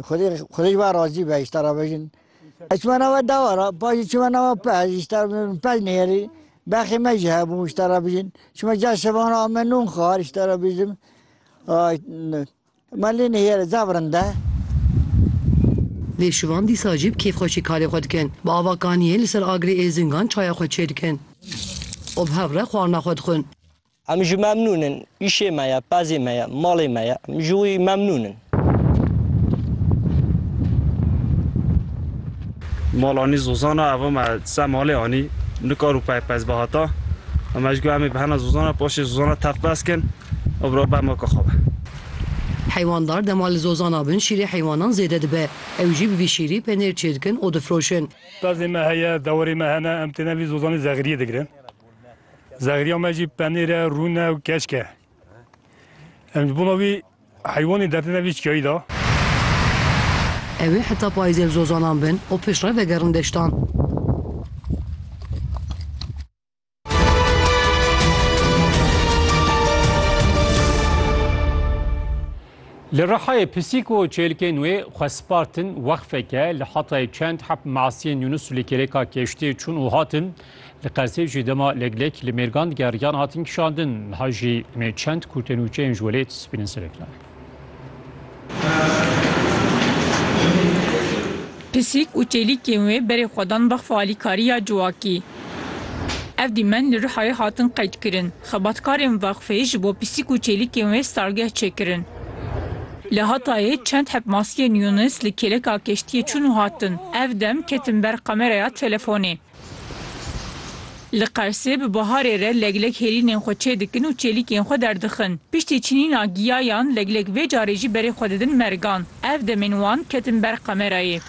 Xwedê xwedê ji wan razî be îşta re vejin. Ez çima nava dawa re paşê çima nava pez îşta pez nêrî bexê me jî hebû îşta re bijin. Çima ca şevan a me nûn xwar îşta re bijim. Me lê nêrê zaf rind e. Lê şivan dîsa jî bi kêfxweşî karê xwe dikin. Bi ava kaniyê li ser agrê Êzingan çaya xwe çêdikin û bi hev re xwarina xwe dixwin. Em ji memnûn in. Îşê me ye, pezê me ye, malê me ye. Em ji wî memnûn in. Mal anî Zozan e. Eva me ser malê anî. Nikar û pey pez be hata. Em ji got em ê bi hena Zozan re paşê Zozan re tef bes kin. Ew bi re ber maka xwe be. Heywanddar dema li Zozan abin şîrê heywanan zêde dibe. Ew jî bi vî şîrî penêr çêdikin û difroşin. Pezê me heye, dewerê me hene. Em têne vî Zozanê Zexiriyê digirin. Zexrîya me jî penêr e, rûn e û keşk e. Em ji bona wî heywanê dertine vî çiyayî de. Ew ê heta payîzê li zozanan bin û piştre vegerin deştan. Li Rihayê pisîk û çêlikên wê xwe spartin wexfeke li Hatayê çend heb masiyên Yunus li kêrêka kêştiyê çûn û hatin Li Qezzê jî dema leglek li mêrgan digeriyan hatin kişandin. Niha jî em ê çend kurtên û çeyên ji welêt spînin sivik nayê. Pisîk û çêlîkên wê berê xwe dan bexfa alîkariya ciwakî. Ev dîmen li Rihayê hatin qeydkirin. Xebatkarên vexfê ji bo pisîk û çêlîkên wê stalgeh çêkirin. Li Hatayê çend heb maskeyên Yûnis li kêleka keştiyê çûn û hatin. Ev dem ketin ber kameraya telefonê. Li Qersê bi baharê re leglek hêlînên xwe çê dikin û çêlîkên xwe derdixin. Piştî çinîna giyayan leglek vê carê jî berê xwe didin mergan. Ev demên wan ketin ber kamerayê.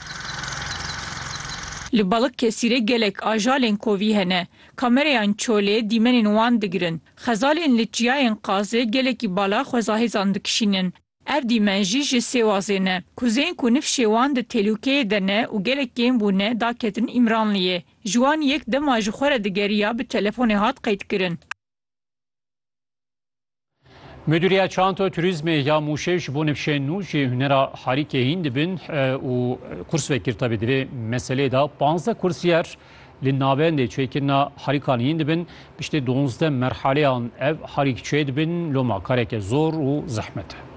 Li Balıkesirê gelek ajalên kovî hene. Kamereyan çolê dîmenên wan digirin. Xezalên li çiyayên Qazê gelekî bala xwezahêzan dikişînin. Ev dîmen jî ji Sêwazê ne. Kuzên ku nifşê wan di têlûkeyê de ne û gelek kêm bûne da ketin Îmranliyê. Ji wan yek dema ji xwe re digeriya bi telefonê hat qeydkirin. Mudîriya Çanto Turîzmê ya Mûşê ji bo nifşên nû ji hunera harîkê hîn dibin û kurs vekir tevî di vê meseleyê de panzdeh kursiyer Li navendê çêkirina harîkan hîn dibin, piştî duwazdeh merhaleyan ev harîk çê dibin, loma kareke zor û zehmet e.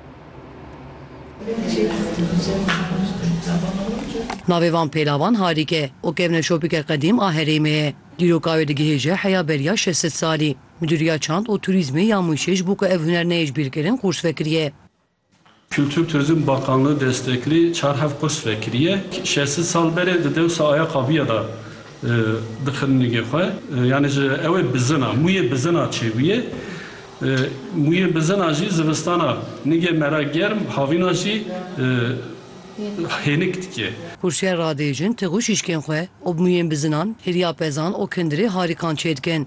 Navê van pêlavan harîk e û kevneşopîke qedîm a herêmê ye. Dîroka wê digihêje heya beriya şeş sed salî. Midûriya Çand û Turîzmê ya Mûşê ji bo ku ev huner neyê ji bîrkirin qûrs vekiriye. Kultur Turizm Bakanlığı destekli çar hev kurs vekiriye. Şeş sed sal berê di dewsa aya qabiye de dixin nigê xwe. Yanê ji ewê bizina, muyê bizina çêbûye. Muyê bizina jî zivistana nigê mera germ, havîna jî hênik dike. Kursiyê radê jin tığu şîşkên xwe û bi muyên bizinan hêriya pezan û kindirê harîkan çêdikin.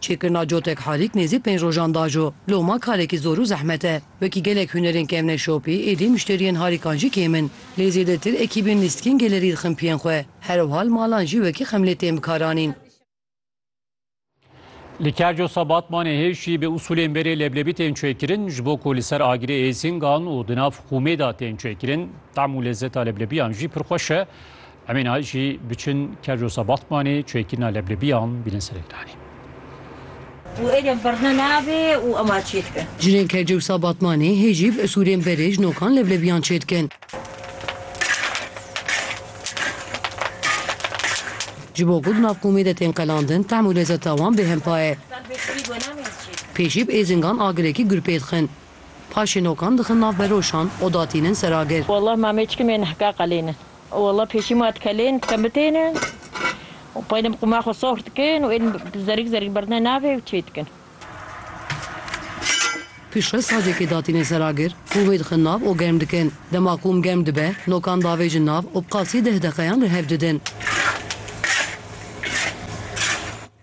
Çêkirina cotek harîk nêzî pênc rojan dajo. Loma karekî zor û zehmet e. Wekî gelek hunerên kevne şopî, êdî muşteriyên harîkan jî kêm in. Lê zêdetir ekîbên lîstikên gelerî dixinpiyên xwe. Herwhal malan jî wekî xemlê tên bikaranîn. Li Kerco Sebatmanê hêjî bi usulên berê leblebî tên çêkirin ji bo ku li ser agirê êzîngan û di nav xûmê de tên çêkirin. Tam û lezeta leblebiyan jî pir xweş e. Em ê niha jî biçin Kerjosa Batmanê çêkirina leblebiyan bînin ser ekranê. Û êdî birna nabê û ema çê dikin. Jinên Kerjosa Batmanê hê jî bi usûlên berê ji nokan leblebiyan çê dikin. Ji bo ku di nav komê de tên qelandin tehm û lezeta wan bêhempa ye. Pê jî bi êzingan agirekî gur pê dixin. Paşê nokan dixin nav beroşan û datînin ser agir. Wallah ma mêçikê mê nihka qelênin. Walla pêşî ma dikelên dikem bitêne û pey dem qûma xwe sox dikin û ên zerik zerik berdine navê û çê dikin. Piştre sacekê datîne ser agir û wê dixin nav û germ dikin. Dema qûm germ dibe nokan davêjin nav û bi qasî deh deqeyan li hev didin.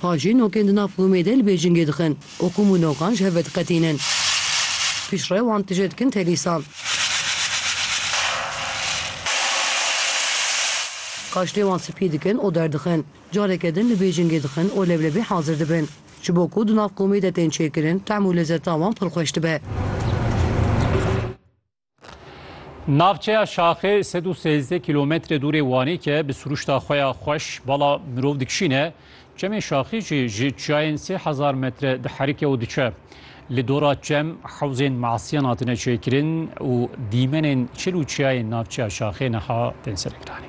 Pha jî nokên di nav komê de li bê cingê dixin û kom û nokan ji hev ve diqetînin. Piştre wan tije dikin telîsan. Kaştê wan spî dikin û derdixin. Careke din li bê cingê dixin û leblebî hazir dibin. Ji bo ku di nav komê de tên çêkirin, tehm û lezeta wan pir xweş dibe. Navçeya Şaxê sed û sêzdeh kîlometre dûrê Wanê ke bi sirûşta xwe ya xweş bala mirov dikişîne, çemê Şaxê jî ji çiyayên sê hezar metre diherike û diçe. Li dora çem hewzên masiyan hatine çêkirin û dîmenên çil û çiyayên navçeya Şaxê niha tên serekiranê.